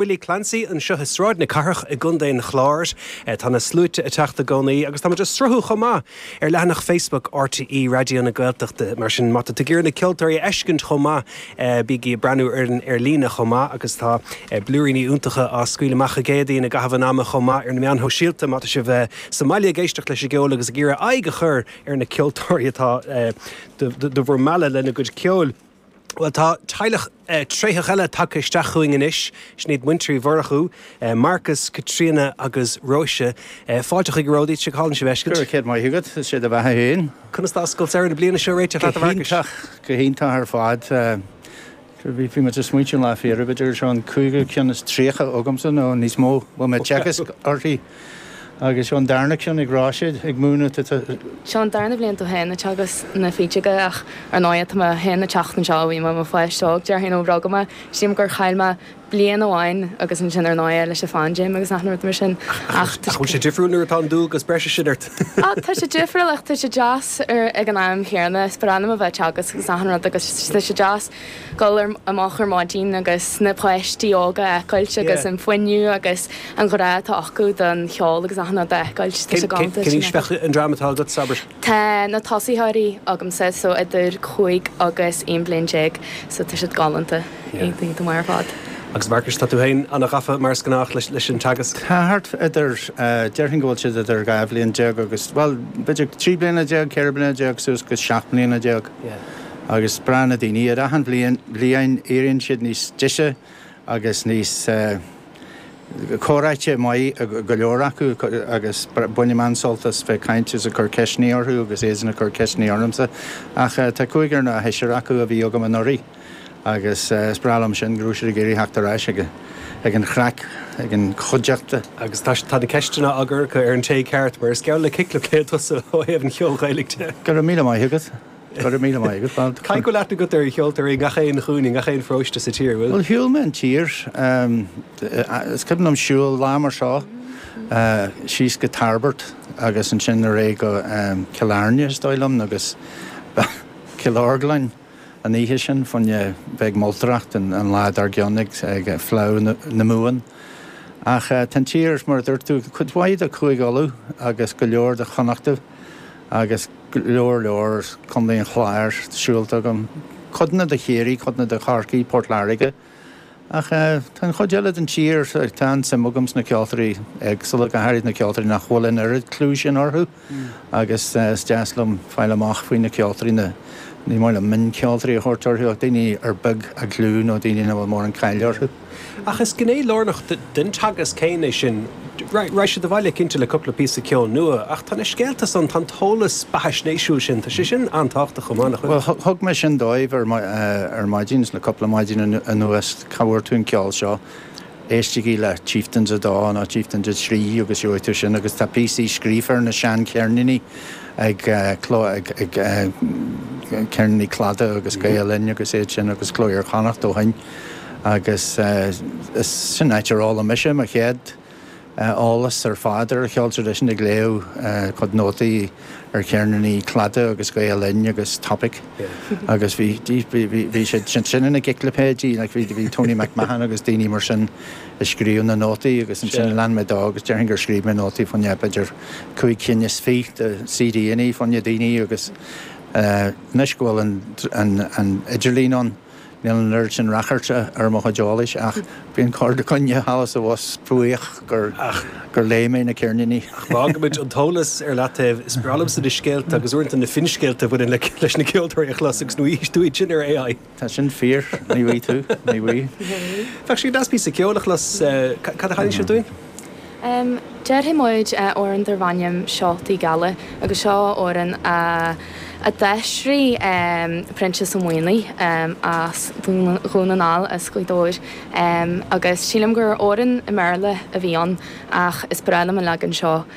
Willie Clancy anseo i Sráid na Cathrach i gContae an Chláir. Tá na sluaite ag teacht i gcónaí agus tá muid ag sruthú chomh maith ar leathanach Facebook RTÉ Raidió na Gaeltachta, mar sin má tá tú ag iarraidh na ceoltóirí a fheiscint chomh maith, bígí ag breathnú orainn ar líne chomh maith agus tá blúiríní iontacha á scaoileadh amach i gcónaí i gcaitheamh an ama chomh maith ar na meáin shóisialta má tá sibh sa mbaile ag éisteacht leis an gceol agus ag iarraidh aghaidh a chur ar na ceoltóirí atá do bhur mealladh lena gcuid ceoil. Bhuel, tá teaghlach tréitheach eile tagtha isteach chugainn anois. Sin iad Muintir Uí Mhurchú, Marcus, Caitríona agus Róise. Fáilte chroíúil romhaibh. Is aoibhinn sibh a fheiscint. Go raibh maith agat. Is é do bheatha féin. Conas atá scoil samhraidh na bliana seo ag réiteach leat, a Mharcais? Go hiontach, go hiontach ar fad. Bhí muid ag smaointiú an lá faoi dheireadh, b'fhéidir go seo an cúigiú ceann is tríocha agamsa nó níos mó a bhfuil mé ag teagasc uirthi? Agus seo an darna ceann ag Róise. Ag múineadh, an ea. Seo an darna bhliain domh féin ag teagasc na feadóige ach ar ndóigh tá mé féin ag teacht anseo ó bhí mé i mo pháiste óg, déarfainn ó rugadh mé. Sílim gur chaill mé bliain amháin agus ansin ar ndóigh leis an phaindéim agus achan rud mar sin ach tá sé difriúil nuair atá an dualgas breise sin ort. Ah tá sé difriúil ach tá sé deas ag an am chéanna is breá liom a bheith ag teagasc agus achan rud agus tá sé deas. dul amach ar maidin agus na páistí óga a fheiceáilt agus an fuinneamh agus an grá atá acu don cheol agus achan rud a fheiceáilt. Tá sé go hiontach. Cén aois bheadh an dream atá agat, abair? Tá na tosaitheoirí agamsa, so idir cúig agus aon bliain déag, so tá siad galánta, iontach maith ar fad. Agus Marcus, tá tú féin an-ghafa mar is gnách leis an teagasc? Tá thart idir, déarfainn go bhfuil siad idir dhá bhliain déag agus, bhuel, b'fhéidir trí bliana déag, ceithre bliana déag suas go seacht mbliana déag. agus breá na daoine iad. Achan bhliain éiríonn siad níos deise agus níos eh. comhráití maith go leor acu agus bainim an-sult as bheith ag caint is ag cur ceisteanna orthu agus iadsan ag cur ceisteanna ormsa. Ach eh. tá cúigear nó seisear acu a bhí agam anuraidh agus eh. is breá liom sin go raibh siad ag iarraidh theacht ar ais ag ag an chraic, ag an chuideachta. Agus tá tá na ceisteanna á gcur acu ar an té ceart mar is geall le ciclipéid tusa ó thaobh an cheoil Ghaelaigh de. Go raibh míle maith agat. Go raibh míle maith agat. Caithfidh go bhfuil aithne agat ar cheoltóirí i ngach aon chúinne, i ngach aon pharóiste sa tír, an bhfuil? Bhuel, shiúil mé an tír. Is cuimhin liom siúl Lia Mar seo síos go Tairbeart agus ansin ar aghaidh go Cill Airne, is dóigh liom, agus Cill Orglain an oíche sin fá choinne a bheith ag moltóireacht an lá dár gcionn ag Fleá na Mumhan. Ach tá an tír, mar a dúirt tú, cuid mhaith de Chúige Uladh agus go leor de Chonnachta. agus lear mór de Chontae an Chláir siúlta agam, codanna de Chiarraí, codanna de Chorcaigh, Port Láirge, ach tá an chuid eile den tír, tá an-suim agam sna ceoltóirí éagsúla, go háirid na ceoltóirí nach bhfuil an oiread clú sin orthu agus is deas liom fáil amach faoi na ceoltóirí, na, ní maith liom mioncheoltóirí a thabhairt orthu ach daoine ar beag a gclú nó daoine nach bhfuil mórán cáil orthu. Ach is gné lárnach den teagasc céanna é sin. Raghaidh siad abhaile cinnte le cúpla píosa ceoil nua ach tá na scéalta ann, tá an t-eolas beathaisnéisiúil sin, tá sé sin an-tábhachtach chomh maith, nach bhfuil? Bhuel, thug mé sin dóibh ar maidin, le cúpla maidin anuas, cá bhfuair tú an ceol seo? Éistigí le Chieftains 2 nó Chieftains 3 agus gheobhaidh tú sin agus tá píosaí scríofa ar na seancheirníní ag Ceirníní Chladaigh agus Gael-Linn agus iad sin agus Cló Iar-Chonnacht ó shin. agus is sin áit ar fhoghlaim mise mo chéad eolas ar fad ar an cheol traidisiúnta, ag léamh cuid nótaí ar cheirníní Cladaigh agus Gael Linn agus Topic agus bhí bhí siad sin ina gciclipéidí, bhí Tony McMahon agus daoine mar sin a scríobh na nótaí agus ansin lean mé dó agus déarfainn gur scríobh mé nótaí fá choinne b'fhéidir cúig cinn is fiche de CDannaí fá na daoine agus anois go bhfuil an idirlíon ann, Níl an oiread sin rachairt ar mo chuid eolais ach bíonn corrdhuine thall is abhus buíoch gur léigh mé na ceirníní. Ach fágfaimid an t-eolas ar leataobh. Is breá liomsa na scéalta agus uaireanta na finscéalta a bhaineann leis na ceoltóirí a chlos agus ní bhfaighidh tú iad sin ar AI. Tá sin fíor, ní bhfuighidh tú, ní bhfuighidh. Bheadh sé go deas píosa ceoil a chlos. Cad a chanfaidh sibh dúinn? Déarfaidh muid amhrán darb ainm Seoltaí Geala agus seo amhrán a d'aistrigh Proinsias Ó Maonaigh as Dún na nGall, as Gaoth Dobhair, agus sílim gur amhrán i mBéarla a bhí ann ach is breá liom an leagan seo.